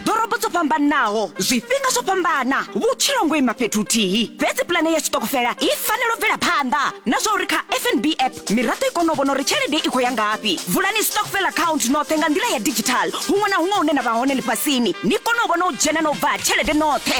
ḓorobo dzo fhambanaho zwifhinga zwo fhambana vhutshilo ngo ima fhethu huthihi fhedzi pulane ya tshiṱokofela i fanela u bvela phanḓa na zwa uri kha fnb app miraḓo i kone u vhona uri tshelede i khou ya ngafhi vulani stokfel account noṱhe nga nḓila ya digital huṅwe na huṅwe hune na vha hone ḽifhasini ni kone u vhona u dzhena na u bva ha tshelede noṱhe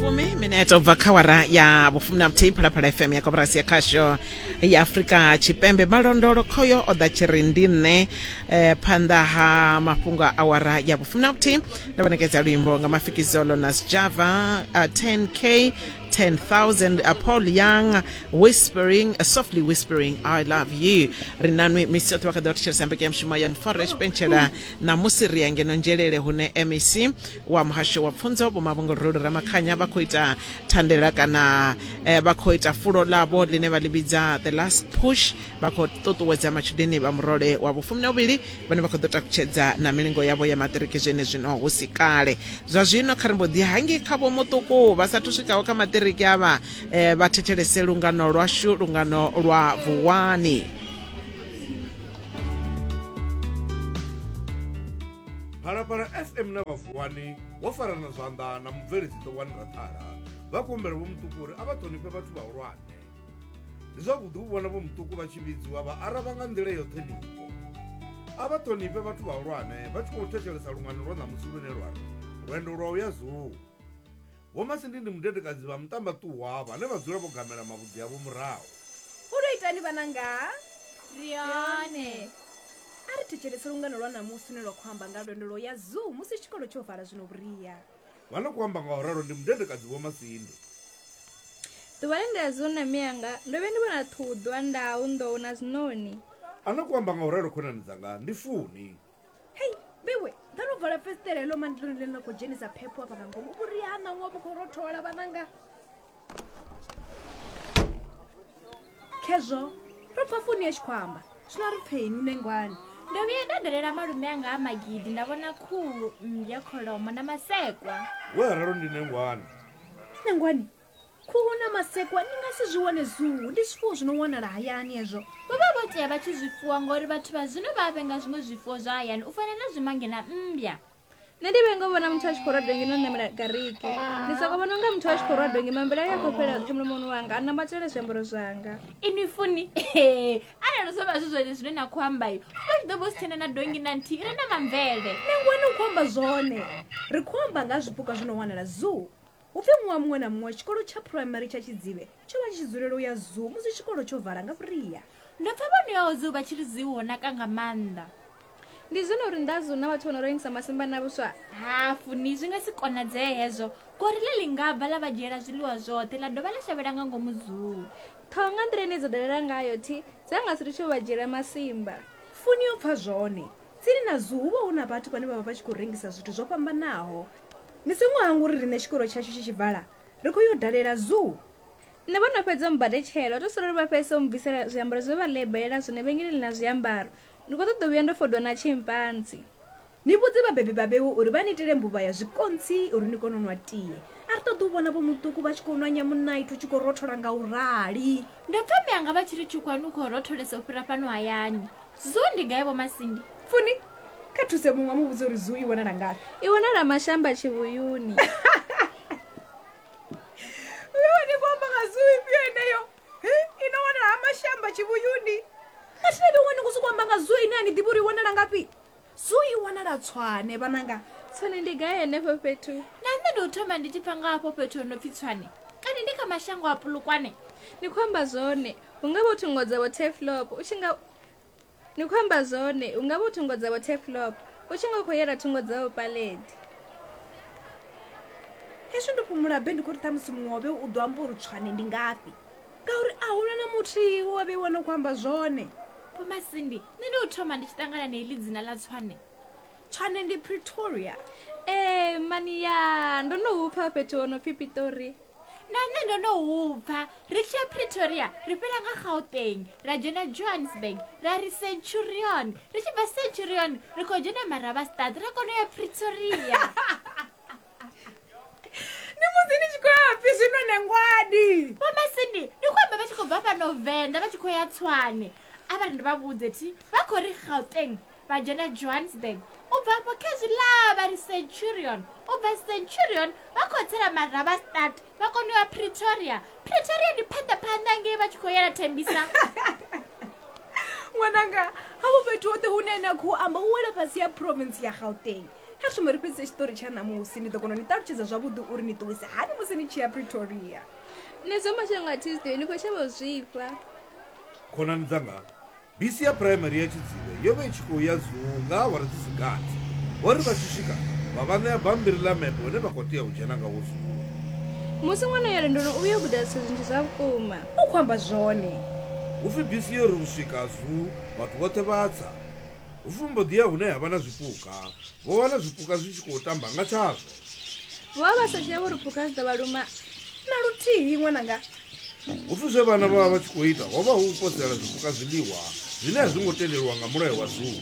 fumi mineta ubva kha wara ya vhufumi na vhuthihi phalaphala fm ya koporasi ya khasho ya afurika tshipembe malondolo khoyo o ḓa tshi ri ndi nṋe eh, phanḓa ha mafhungo a awara ya vhufumi na vhuthihi ndo vhanekedza luimbo nga mafikizolo na sjava uh, 10k 10000 uh, paul young whispering uh, softly whispering i love you ri nanwi misi yoṱhe vha kha ḓi vha thetshelesa mbeke ya mushumo ya nfora tshipentshela ṋamusi ri ya ngeno nzhelele hune mec wa muhasho wa pfunzo vho mavhongolorelo ramakhanya vha khou ita thandela kana eh, vha khou ita fulo ḽavho ḽine vha ḽi vhidza the last push vha khou ṱuṱuwedza matshudeni vha murole wa vhufumi na vhuvhili vhane vha khou ḓo takutshedza na milingo yavho ya maṱiriki zwene zwino hu si kale zwa zwino kha ri mbo ḓi hangi kha vho muṱuku vha sathu swikaho kha maṱiriki avha eh, vha thetshelese lungano lwashu lungano lwa vuwani phalaphala fm na vhavuwani wo farana zwanḓa na mubveledzi ṱowani raṱhala vha kumbela vho muṱuku uri a vha ṱhonifhe vhathu vhahulwane ndi zwavhuḓi u vhona vho muṱuku vha tshi vhidziwa vha araba nga nḓila yo ṱhonifho a vha ṱhonifhe vhathu vhahulwane vha tshi khou thetshelesa lungano lwa ṋamusi lune lwa ri lwendo lwa u ya zuu Vho Masindi ndi mudedekadzi vha muṱambaṱuwa vhane vha dzula vho gamela mavhudzi avho murahu. U ri itani vhananga? Ri hone. A ri thetshelese lungano lwa ṋamusi lune lwa khou amba nga lwendo lwo ya Zoo musi tshikolo tsho vala zwino vhuria. Vha no khou amba nga u ralo ndi mudedekadzi Vho Masindi. Ḓuvha ḽe nda ya Zoo na mianga, ndo vhuya ndi vhona ṱhuḓwa, ndau, nḓou na zwiṋoni. A no khou amba nga u ralo khonani dzanga ndi Funi. hei vhewe ḓa no vala fesitela heḽo mandiloni ḽe ḽa khou dzhenisa phepho afha nga ngomu vhuria ha ṋaṅwa vhu khou rothola vhananga khezwo ro pfa foni ya tshi khou amba zwino ri pfeini u nengwani ndo vhuya nda dalela malume anga a magidi nda vhona khuhu mmbya kholomo na masekwa we rero ndi nengwani nengwani Khuhu na masekwa ni nga si zwi wane zuu, ndi zwifuwo zwi no wanala hayani hezwo. Vho vha vho tea vha tshi zwi fuwa ngauri vhathu vha zwino vha a vhenga zwiṅwe zwifuwo zwa hayani u fana na zwimange na mmbya. Nṋe ndi vhenga u vhona muthu a tshi khou rwa dongi no ṋamela gariki. Ndi soko vhona unga muthu a tshi khou rwa dongi mambele ayo a khou fhelela zwoṱhe mulomoni wanga a nambatela zwiambaro zwanga. Inwi funi, arali zwo vha zwi zwone zwine na khou amba, ho vha zwi ḓo vha hu si tshena na dongi na nthihi i re na mamvele. Nangwani u khou amba zwone. Ri khou amba nga ha zwipuka zwi no wanala zuu. Hu pfi ṅwaha muṅwe na muṅwe tshikolo tsha phuraimari tsha Tshidzivhe tsho vha tshi tshi dzulela u ya zoo musi tshikolo tsho vala nga vhuria. Ndo pfa vha no yaho zoo vha tshi ri zoo ho naka nga maanḓa. Ndi zwone uri nnḓa ha zoo hu na vhathu vho no rengisa masimba na vhuswa? Hafu ni, zwi nga si konadzee hezwo. Gorilla ḽi nga bva ḽa vha dzhiela zwiḽiwa zwoṱhe ḽa dovha ḽa shavhela nga ngomu zoo. Ṱhoho nga nḓila ine dza dalela ngayo, thi dza nga si litshe u vha dzhiela masimba. Funi yo pfa zwone. Tsini na zoo hu vha hu na vhathu vhane vha vha vha tshi khou rengisa zwithu zwo fhambanaho. Ni songo hangwa uri riṋe tshikolo tshashu tshi tshi vala, ri khou yo dalela zoo. Nṋe vho no fhedza u mmbadetshela, u tou sala uri vha fhedzise u mmbvisela zwiambaro zwe vha lebelela zwone vhengeleni ḽa zwiambaro. Ndi khou ṱoḓa u vhuya ndo fodwa na tshimpanzi. Ni vhudze vhabebi vha Vhewu uri vha ni itele mbuvha ya zwikontsi uri ni kone u nwa tie. A ri ṱoḓi u vhona Vho Muṱuku vha tshi khou nwa nyamunaithi u tshi khou rothola nga u rali. Ndo pfa mme anga vha tshi ri Tshukhwani u khou rotholesa u fhira fhano hayani. Zuu ndi gai vho Masindi? Funi, kha thuse muṅwe mu vhudze uri zuu i wanala ngafhi. I wanala mashamba tshivhuyuni. Uyo ni vho amba nga zuu ifhio eneyo? I no wanala ha mashamba tshivhuyuni. Mathina ndi ṅwana ni khou sokou amba nga zuu ine a ni ḓivhi uri i wanala ngafhi. Zoo i wanala Tshwane, vhananga. Tshwane ndi gai henefho fhethu? Na nṋe ndo thoma ndi tshi pfa nga hafho fhethu ho no pfi Tshwane. Kani ndi kha mashango a Polokwane? Ni khou amba zwone. Hu nga vha u thungo dzavho Turfloop. U tshi nga. Ni khou amba zwone. Hu nga vha u thungo dzavho Turfloop. U tshi nga u khou yela thungo dzavho Paledi. Hezwi ndo fhumula be ndi khou ri ṱhamusi muṅwe wa vhe u ḓo amba uri Tshwane ndi ngafhi. ngauri a huna na muthihi wo a vheiwa no khou amba zwone vhomasindi nṋe ndi u thoma ndi tshi ṱangana na iḽi dzina ḽa tswane tswane ndi pretoria ee mani ya ndo no hupfa fhethu ho no pfi pitori na nṋe ndo no hupfa ri tshi ya pretoria ri fhela nga gauteng ra dzhena johannesburg ra ri centurion ri tshi bva centurion ri khou dzhena maravastad ra kona u ya pretoria ni musi ni tshi khou ya pfi zwino ne ngwadi mama sindi ndi khou amba vha tshi khou bva fhano venḓa vha tshi khou ya tswane a vha ri ndi vha vhudze thi vha khou ri gauteng vha dzhena johannesburg u bva afho khezwi ḽa vha ri centurion u bva centurion vha khou tsela maraba start vha kone u ya pretoria pretoria ndi phanḓa phanḓa ngei vha tshi khou yela thembisa ṅwananga havho fhethu hoṱhe hune na khou amba u wela fhasi ya province ya gauteng Kha shume ri fhedzise tshiṱori tsha ṋamusi. Ndi ḓo kona u ni ṱalutshedza zwavhuḓi uri ni ṱuwise hani musi ni tshi ya Pretoria. Ni zwa mashango a Tisdale, ni khou shavha u zwifha. Khonani dzanga, bisi ya Phuraimari ya Tshidzivhe yo vha i tshi khou ya Zuu nga awara dzi si gathi. Vho ri vha tshi swika, vha vha ṋea bammbiri ḽa mepe une vha khou tea u dzhena ngawo Zuu. Musi ṅwana ya lwendoni u vhuya o guda zwithu zwinzhi zwa vhukuma. U khou amba zwone. Hu pfi bisi yo ri u swika Zuu, vhathu vhoṱhe vha tsa. Vho mbo ḓi ya hune ha vha na zwipuka, vho wana zwipuka zwi tshi khou tamba nga tshazwo. Vho vha vha sa dzhia uri phukha dzi ḓo vha luma na luthihi ṅwananga. Hu pfi zwe vhana vha vha vha tshi khou ita ho vha hu u posela zwipuka zwiḽiwa zwine a zwi ngo tendelwa nga mulayo wa zoo.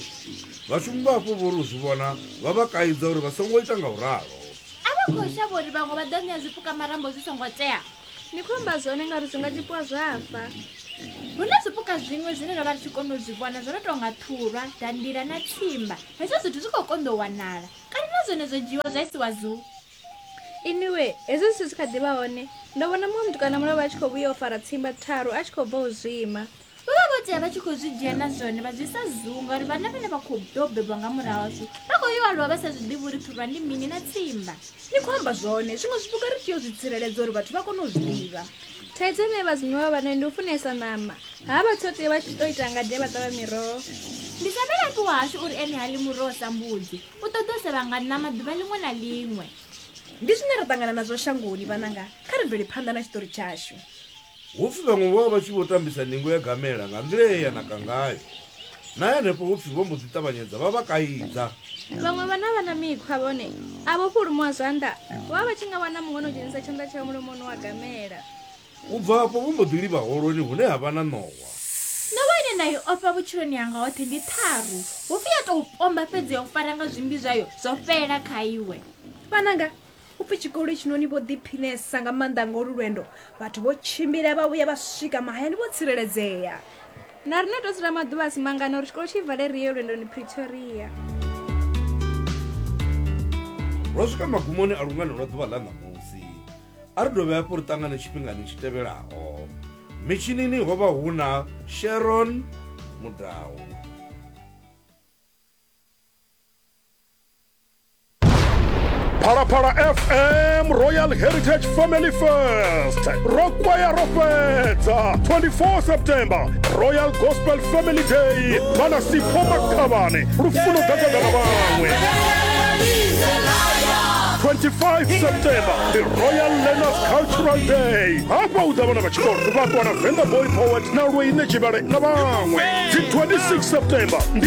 Vhashumi vha afho vho ri u zwi vhona vha vha kaidza uri vha songo ita nga u ralo. A vha khou shavha uri vhaṅwe vha ḓo ṋea zwipuka marambo zwi songo tea. Ni khou amba zwone ngauri zwi nga tshipuwa zwa fa. Hu na zwipuka zwiṅwe zwine ro vha ri tshi kona u zwi vhona zwo no tou nga ṱhulwa, dandila na tshimba. Hezwo zwithu zwi khou konḓa u wanala. Kale na zwone zwo dzhiiwa zwa isiwa zuu. Iniwe, hezwi zwithu zwi kha ḓi vha hone, ndo vhona muṅwe mutukana mulovha a tshi khou vhuya o fara tshimba tharu a tshi khou bva u zwima. Vho vha vho tea vha tshi khou zwi dzhia na zwone vha zwi sa zunga uri vhana vhane vha khou ḓo bebwa nga murahu ashu vha khou yo aluwa vha sa zwi ḓivhi uri phirwa ndi mini na tsimba ni khou amba zwone zwiṅwe zwipuka ri tea u zwi tsireledza uri vhathu vha kone u zwi ḓivha thaidzo ine vhadzimu vha vha nayo ndi u funesa ṋama ha vha tshoṱe vha tshi ḓo ita ngade vha ṱavha miroho ndi sa vhelapi wahashu uri ene ha ḽi muroho sa mbudzi u ṱoḓa u sevha nga ṋama ḓuvha ḽiṅwe na ḽiṅwe ndi zwine ra ṱangana nazwo shangoni vhananga kha ri bvele phanḓa na tshiṱori tshashu Hupfi vhaṅwe vho vha vha tshi vho tambisa ningo ya gamela nga nḓila ye ya naka ngayo. Na henefho hupfi vho mbo ḓi ṱavhanyedza vha vha kaidza. Vhaṅwe vhana vha na mikhwa vhone a vho fhulumuwa zwanḓa, vho vha vha tshi nga wana muṅwe no dzhenisa tshanḓa tshawe mulomoni wa gamela. U bva afho vho mbo ḓi livha holoni hune ha vha na ṋowa. Ṋowa ine nda i ofha vhutshiloni hanga hoṱhe ndi ṱharu, hupfi ya tou pomba fhedzi ya u fara nga zwimbi zwayo zwo fhelela kha iwe. Vhananga, U pfi tshikolo hetshinoni vho ḓiphinesa nga maanḓa nga olu lwendo. Vhathu vho tshimbila vha vhuya vha swika mahayani vho tsireledzea. Na riṋe ri tou dzula maḓuvha a si mangana uri tshikolo tshi vale ri ye lwendoni Pretoria. Ro swika magumoni a lungano lwa ḓuvha ḽa ṋamusi. A ri dovhe hafhu ri ṱangane tshifhingani tshi tevhelaho. Mitshinini ho vha hu na Sharon Mudau. phalaphala fm royal heritage family fest ro kwaya ro fhedza 24 september royal gospel family day vhana sipho makhavhane lufuno gagagana vhaṅwe 25 september the royal learners cultural day hafha u ḓa vhana vha tshikolo vhakwana venga boy poet na lweine tshivhale na vhaṅwe dzi 26 september ndi